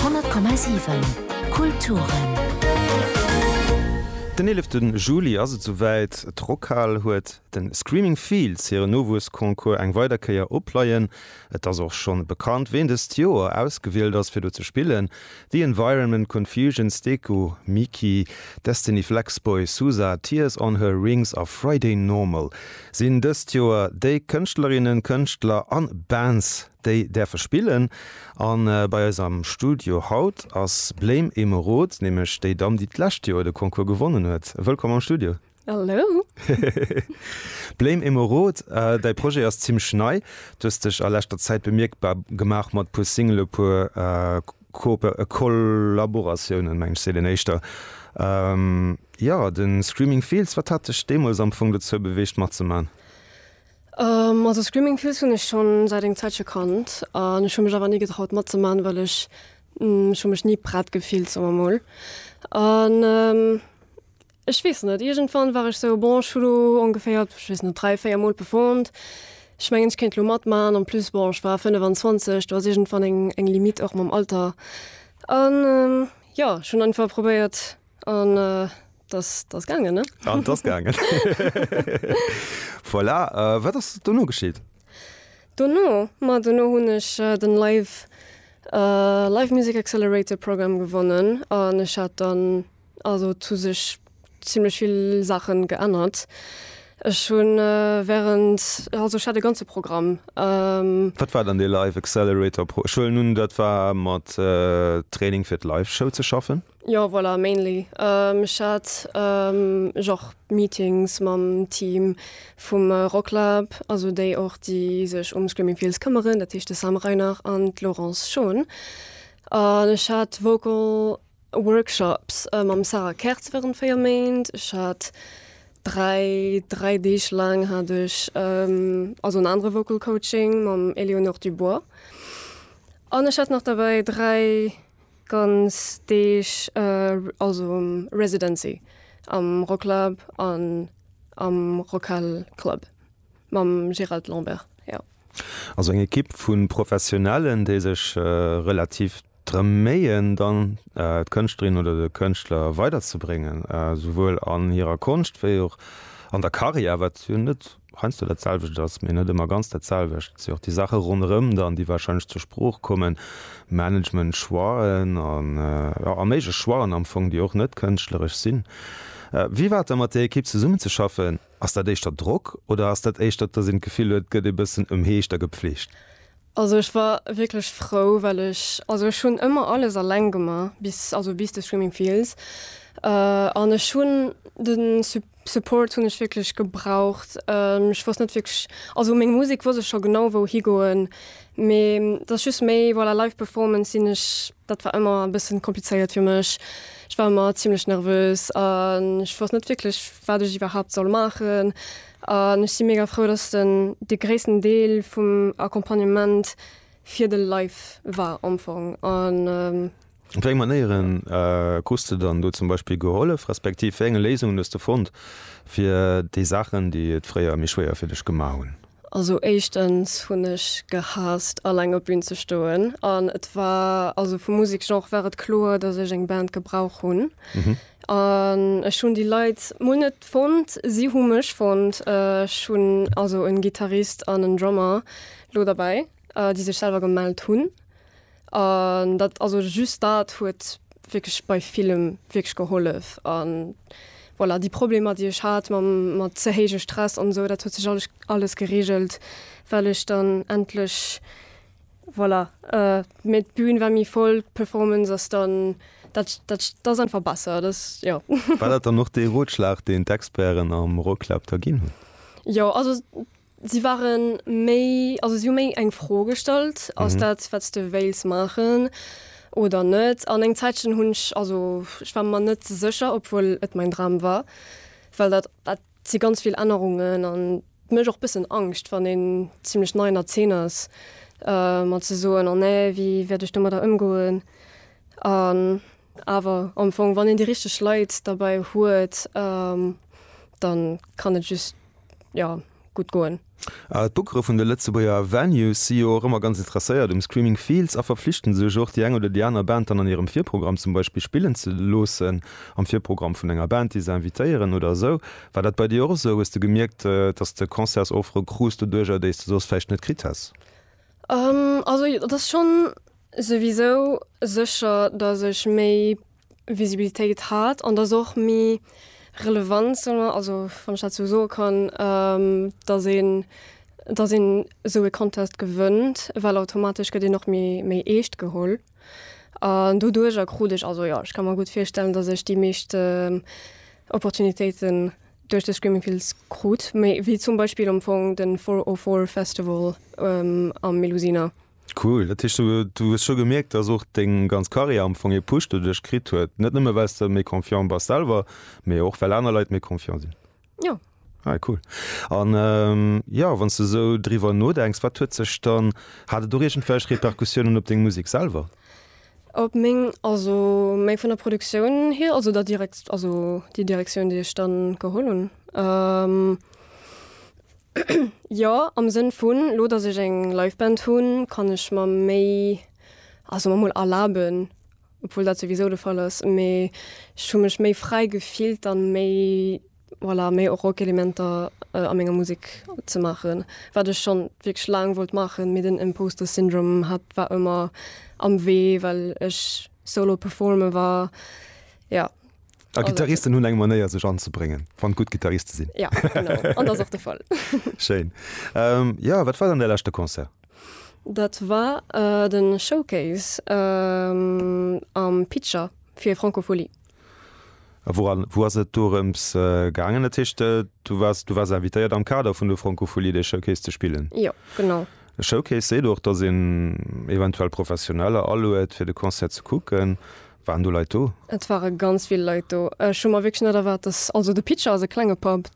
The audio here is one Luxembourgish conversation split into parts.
100,7 Kulturen. Den 11 Juli ass et souwäit, d'Rockhal huet de Screaming Fields hire Nowuessconcours eng weider Kéier op Pleien. Et ass och schonn bekannt, ween dëst Joer ausgewielt ass fir do ze spillen, The Environment, Confusion, Steco, Miki, Destiny, Flexboy, Sousa, Tears On Her Rings a Friday Normal sinn dëst Joer déi Kënschtlerinnen, Kënschtler an Bands, Déi däerfe spillen. An bei eis am Studio haut ass Blame Emeraude, nämlech déi Damm déi d'lescht Joer de Concours gewonnen huet. Wëllkomm am Studio. Hallo. Blame Emeraude, däi Projet ass zimmlech nei. Du hues dech a leschter Zäit bemierkbar gemaach mat e puer Singele puer Kollaboratiounen, mengen ech seet een éischter. Jo, de Screaming Fields, wat hat dech deemools am Fong dozou beweegt matzemachen? Also Screaming Fields hunn ech schonn säit eng Zäitche kannt an ech hu mech awer ni getraut matzeman, well ech ech hu mech ni prett gefillt soen mer mol. An ech weess net, iergendwann war ech sou, bon ech hu lo ongeféier, ech weess net, dräi, véier mol performt, ech mengen ech kéint lo matman. En plus bon ech war 25, do ass iergendwann eng eng Limite och mam Alter an jo ech hunn einfach probéiert An t'ass gaangen, ne? An t'ass gaangen. Voilà. Wat ass dono geschitt? Dono? Ma dono hunn ech den Live, Live Music Accelerator Programme gewonnen an ech hat dann also zu sech zimmlech vill Saachen geännert. Ech hunn während, also ech hat e ganze Programm. Wat war dann dee Live Accelerator Pro? Ech huelen un, dat war mat Training fir d'Live Show ze schaffen? Jo voilà mainly ech hat genre meetings mam Team vum Rocklab, also déi och déi sech um Screaming Fields këmmeren, dat heescht de Sam Reinach an d'Laurence Schon. An ech hat Vocal Workshops mam Sarah Kertz wärend 4 Méint. Ech hat dräi, dräi Deeg laang hat ech also en anere Vocal Coaching mam Éléonore Dubois. An ech hat nach derbäi dräi Ganz Deeg, also um Residency, am Rocklab an am Rockhal Club mam Gérald Lambert, jo. Also eng Ekipp vu Professionellen, déi sech relativ drëm méien, dann d'Kënschtlerin oder de Kënschtler weiderzebréngen, souwuel an hirer Konscht wéi och an der Karriär, wat jo net heiansdo dat selwecht ass, mee net ëmmer ganz dat selwecht. Et si och déi Saache ronderëm dann, déi warscheinlech zur Sprooch kommen, Management-Choixen a méiglech Choixen am Fong, déi och net kënschtleresch sinn. Wéi war et da mat där Ekipp zesummenzeschaffen? Ass dat éischter Drock oder ass dat éischter, datt een d'Gefill huet, et gëtt ee bëssen ëmheescht a gepflegt? Also ech war wierklech frou, well ech, also ech hunn ëmmer alles eleng gemaach, bis, also bis de Screaming Fields an ech hunn de. Support hunn ech wierklech gebraucht. Ech wosst net wierklech, also meng Musek wosst ech scho genau wou higoen, mee dass just méi voilà live performance sinn ech, dat war ëmmer e bëssen komplizéiert fir mech. Ech war ëmmer zimmlech nervös an ech wosst net wierklech wat ech iwwerhaapt soll maachen an ech si mega frou dass den de gréissten Deel vum Accompagnement fir de Live war am Fong an. Op wéi eng Manéieren krus de dann do zum Beispill gehollef, respektiv wéi enge Léisungen hues de fonnt fir déi Saachen, déi et fréier méi schwéier fir dech gemaach hunn? Also éischtens hunn ech gehaasst alleng op Bün ze stoen an et war, also vum Museksgenre war et kloer, dass ech eng Band gebrauch hunn an ech hunn déi Leit mol net fonnt, si hu mech fonnt. Ech hunn also en Gittarist an en Drummer lo derbäi. déi sech selwer gemellt hunn an dat also just dat huet wierklech bei villem wierklech gehollef an voilà déi Problemer déi ech hat mam mat ze héije Stress an esou dat huet sech alles alles geregelt well ech dann endlech voilà mee d'Bün war méi voll d'Performance ass dann dat dat ass einfach besser dat jo. War dat dann och dee Rotschlag deen d'Experten am Rocklab da ginn hunn? Jo also Si ware méi, also si hu méi eng Fro gestallt, ass dat wat s de wéils maachen oder net? An eng Zäitchen hunn ech, also ech war mer net sécher, obwuel et mäin Dram war, well dat dat si ganz vill Ännerungen an et mécht och bëssen Angscht, wann een zimlech nei an der Zeen ass, mat ze soen, oh nee, wéi wäert ech domadder ëmgoen? An Awer am Fong, wann een déi richteg Leit derbäi huet, da kann et just, jo, gutt goen. D'Bookere vun de Lëtzebuerger Venues si jo och ëmmer ganz interesséiert um Screaming Fields a verflichten sech och, déi eng oder déi aner Band dann an hirem Virprogramm zum Beispill spillen ze loossen, am Virprogramm vun enger Band, déi se invitéieren oder esou. War dat bei dir och esou? Hues de gemierkt, dass de Concertsoffere krus doduerjer, déi s de soss vläicht net kritt häss? Also jo, et ass schonn souwisou sécher, datt ech méi Visibilitéit hat an datt och méi Relevanz, solle mer, also wann ech dat sou soe kann, datt een, datt een esou e Contest gewënnt, well automatesch gëtt een och méi, méi eescht geholl. An doduercher krut ech, also jo, ech ka mer gutt virstellen, datt ech déi meescht Opportunitéite duerch de Screaming Fields krut, méi wéi zum Beispill am Fong den Four O Four Festival am Melusina. Cool, dat heescht du hues scho gemierkt dass och deng ganz Carrière am Fong ee Push doduerch kritt huet, net nëmme well s de méi confiant bass selwer, mee och well aner Leit méi confiant sinn? Jo. Ah cool. An jo, wann s de sou driwwer nodenks, wat huet sech dann, hat et och iergendwelch Repercussiounen op deng Musek selwer? Op meng, also méi vun der Produktioun hier, also der Direkt, also déi Direktioun, déi ech dann geholl hunn. Jo, am Sënn vun, elo datt ech eng Live-Band hunn, kann ech mer méi, also emol erlaben, obwuel dat souwisou de Fall ass, mee ech hu mech méi fräi gefillt, dann méi. Voilà, méi och Rockelementer a menger Musek ze maachen, wat ech schonn wierklech laang wollt maachen, mee den Imposter Syndrom hat war ëmmer am Wee, well ech solo performe war, jo. A Gittaristen hunn eng Manéier sech anzebréngen, wann gutt Gittariste sinn. Ja, genau, an dat ass och de Fall. Schéin. Jo, wat war dann däi leschte Concert? Dat war de Showcase am Pitcher fir Francophonie. A woran, wou ass et dorëms gaangen? Dat heescht, du waars, du waars invitéiert am Kader vun der Francophonie dee Showcase ze spillen? Jo, genau. E Showcase seet och, datt een eventuell Professioneller aluet fir de Concert ze kucken. Waren do Leit do? Et ware ganz vill Leit do. Ech hu mer wierklech net erwaart, datt, also de Pitcher ass e klenge Pub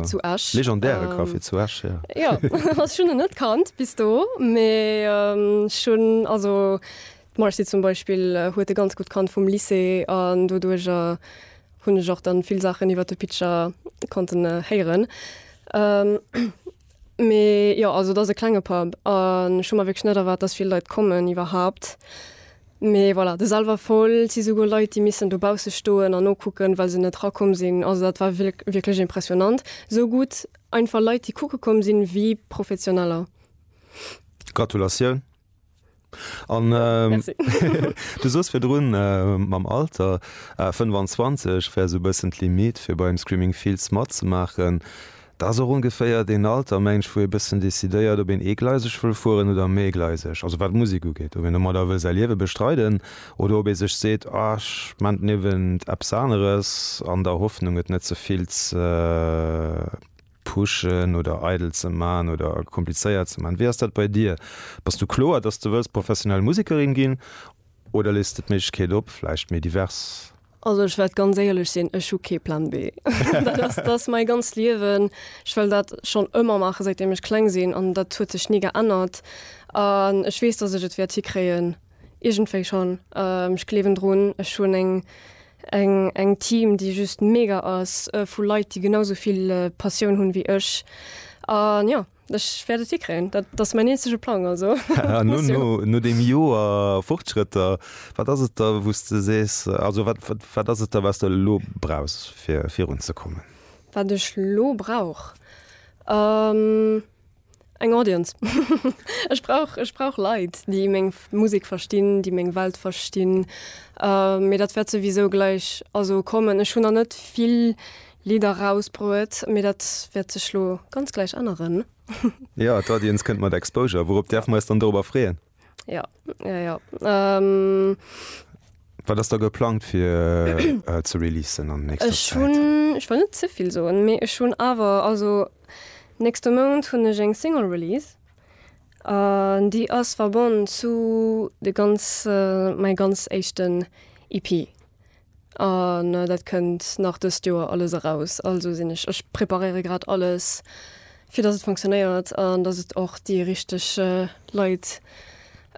zu Esch. Legendäre Café zu Esch, jo. Jo, ech hunn en net kannt bis do, mee ech hunn, also D'Marcy zum Beispill huet e ganz gutt kannt vum Lycée an doduerjer hunn ech och dann vill Saachen iwwert de Pitcher konnten héieren. Mee jo, also et ass e klenge Pub an ech hu mer wierklech net erwaart, dass vill Leit kommen iwwerhaapt. Mee voilà, de Salverfall, et si souguer Leit, déi missen dobausse stoen an nokucken, well se net rakomm sinn. Also dat war wierklech impressionant, sou gutt einfach Leit, déi kucke komm sinn, wéi Professioneller. Gratulatioun! An du soos virdrun mam Alter 25 wär sou e bëssen d'Limite fir beim Screaming Fields matzemaachen. Dat ass och ongeféier deen Alter mengt ech wou ee bëssen decidéiert op een eegleiseg wëll fueren oder e méigleiseg, also wat d'Musek ugeet, ob een domat da wëll säi Liewe bestreiden oder ob ee sech seet ah ech maan den Iewen eppes aneres an der Hoffnung et net ze vill ze pushen oder eidel ze man oder komplizéiert ze man. Wéi ass dat bei dir? Bass du kloer dass du wëlls professionell Musekerin ginn oder lees de d'Méiglechkeet op vläicht méi divers? Also ech wäert ganz éierlech sinn, ech hu kee Plan B. Dat ass dat ass mäi ganzt Liewen. Ech wëll dat schonn ëmmer maachen säit deem ech kleng sinn an dat huet sech ni geännert an ech weess dass ech et wäert hikréien iergendwéi schonn. Ech gleewen drun. Ech hunn eng Eng eng Team déi just mega ass vu Leit déi genau sou vill Passioun hunn wéi ech an jo ech wäert et hikréien. Dat ass mäin eenzege Plang also. An no no no deem Joer Fortschrëtter, wat ass et da wou s de sees, also wat wat wat ass et da wat s de elo brauchs fir virunzekommen? Wat ech lo brauch? Eng Audience. Ech brauch, ech brauch Leit, déi meng Musek verstinn, déi meng Welt verstinn. Mee dat wäert souwisou gläich also kommen. Ech hunn nach net vill Lidder rausbruet, mee dat wäert sech lo ganz gläich änneren. Jo, d'Audience kënnt mat Exposure. Wourop däerfe mer eis dann dorobber freeën? Ja, ja, ja. Ähm, Wat ass da geplangt fir äh, ze releasen an nächster ech Zäit? hunn, ech wollt net ze vill soen, mee ech hunn awer, also nächste Mount hunn ech eng Single Release. An déi ass verbonnen zu de ganz, äh, mäi ganz éischten EP. An dat kënnt nach dëst Joer alles eraus. Also sinn ech, ech preparéiere grad alles, fir dass et funktionéiert an dass et och déi richteg Leit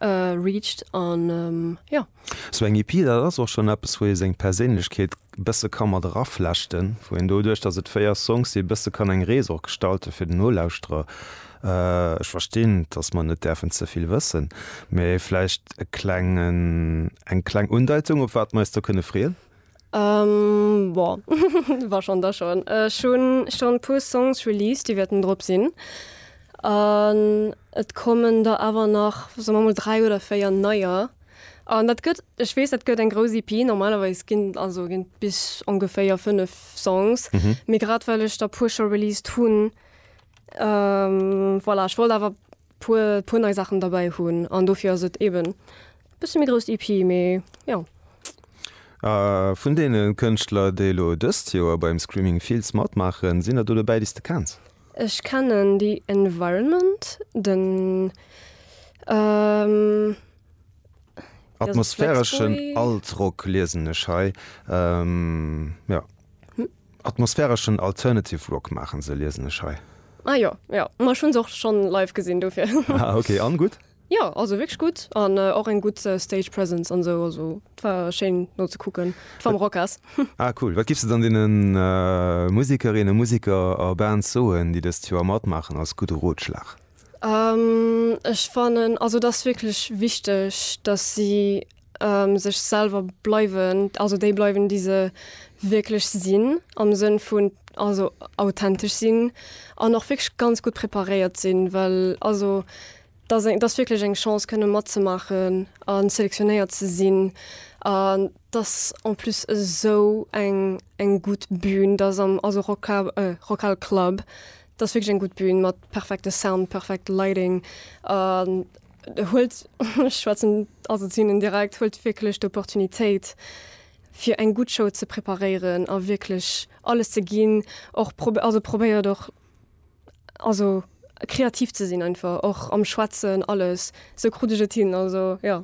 reacht an jo. Sou eng EP, dat ass och schonn eppes, wou ee seng Perséinlechkeet e bësse ka mat eraflechten, wou een doduerch, dass et véier Songs si, e bësse kann eng Rees och gestalten, fir den Nolauschterer Ech verstinn, dass mer net däerfen ze vill wëssen, mee vläicht e klengen, eng kleng Undeitung, op wat mer eis do kënne freeën? Bon, wa schonn, da schonn. Ech hu schonn e puer Songs released, déi wäerten drop sinn. An et kommen der awer nach, soe mer mol, dräi oder véier neier. An dat gëtt, ech weess, dat gëtt eng grouss EP. Normalerweis ginn, also ginn bis ongeféier fënnef Songs. Mee grad well ech der e puer scho released hunn, Voilà, ech wollt awer puer puer nei Saachen derbäi hunn an dofir ass et eben bësse méi grouss d'EP, mee jo. A vun deene Kënschtler, déi elo dëst Joer beim Screaming Fields matmaachen, sinn der do dobäi, déi s de kenns? Ech kennen The Environment, den atmosphäreschen Alt-Rock liesen ech hei, jo. Atmosphäreschen Alternative Rock maachen se, liesen ech hei. Ah jo, jo, ma ech hunn se och schonn live gesinn, dofir. Ah ok, an gutt? Jo, also wierklech gutt an och eng gutt Stage Presence an esou, also et war schéin no ze kucken, et war am Rockhas. Ah cool, wat giffs de dann deenen Musikerinnen, Musiker a Bands soen, déi dëst Joer matmaachen als gudde Rotschlag? Ech fannen also et ass wierklech wichteg, dass si. sech selwer bleiwen, also déi bleiwen déi se wierklech sinn am Sënn vun also authentesch sinn an och wierklech ganz gutt preparéiert sinn, well also da se datt wierklech eng Chance kënne matzemaachen an selektionéiert ze sinn an datt en plus esou eng eng gutt Bün datt am also Rock Cab Rockhal Club datt wierklech eng gutt Bün mat perfekte Sound, perfekt Lighting an. huelt, ech schwätzen also zu hinnen direkt, huelt wierklech d'Opportunitéit fir eng gutt Show ze preparéieren a wierklech alles ze ginn. Och prob also probéiert och also kreativ ze sinn einfach och am Schwätzen alles, esou krut ech et hin, also jo.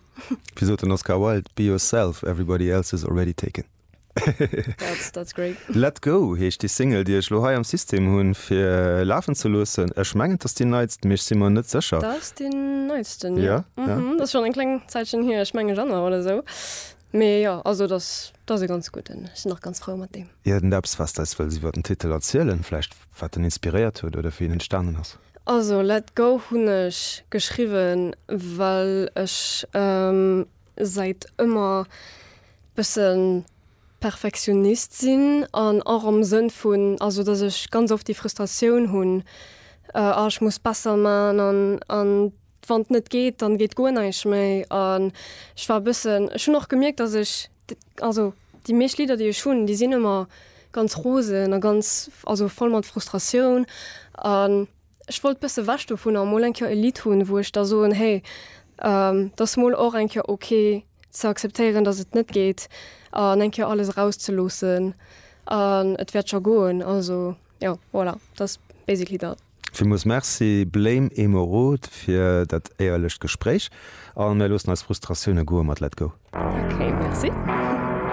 Wéi sot den Oscar Wilde, Be yourself, everybody else is already taken. That's, that's great. Let Go heescht déi Single, déi ech lo hei am System hunn, fir lafen ze loossen. Ech mengen, et ass déi neitst, mee ech si mer net sécher. Dat ass déi neitsten, jo. Ja, ja. Dat ass schonn eng kleng Zäitchen hier, ech menge Januar oder esou. Mee jo, also et ass, et ass e ganz gudden. Ech sinn och ganz frou mat deem. Iergendeppes, wat s de eis wëlls iwwer den Titel erzielen, vläicht wat en inspiréiert huet oder wéi en entstanen ass? Also Let Go hunn ech geschriwwen, well ech Seit ëmmer bëssen Perfektionist sinn an och am Sënn vun also dass ech ganz oft déi Frustratioun hunn ah ech muss besser man an an wann net geet dann geet guer neischt méi an ech war bëssen ech hunn och gemierkt dass ech also déi meescht Lidder déi ech hunn déi sinn ëmmer ganz rosen a ganz also voll mat Frustratioun an. Ech wollt bësse wech dovunner mol eng Kéier e Lidd hunn, wou ech da soen, hey, dat ass mol och eng Kéier ok ze akzeptéieren, datt et net geet an eng Kéier alles erauszeloossen an et wäert scho goen. Also jo, voilà, dat ass basically dat. Villmools Merci Blame Emeraude fir dat éierlecht Gespréich a mir loossen eis Frustratioune goe mat Let Go. Ok, Merci.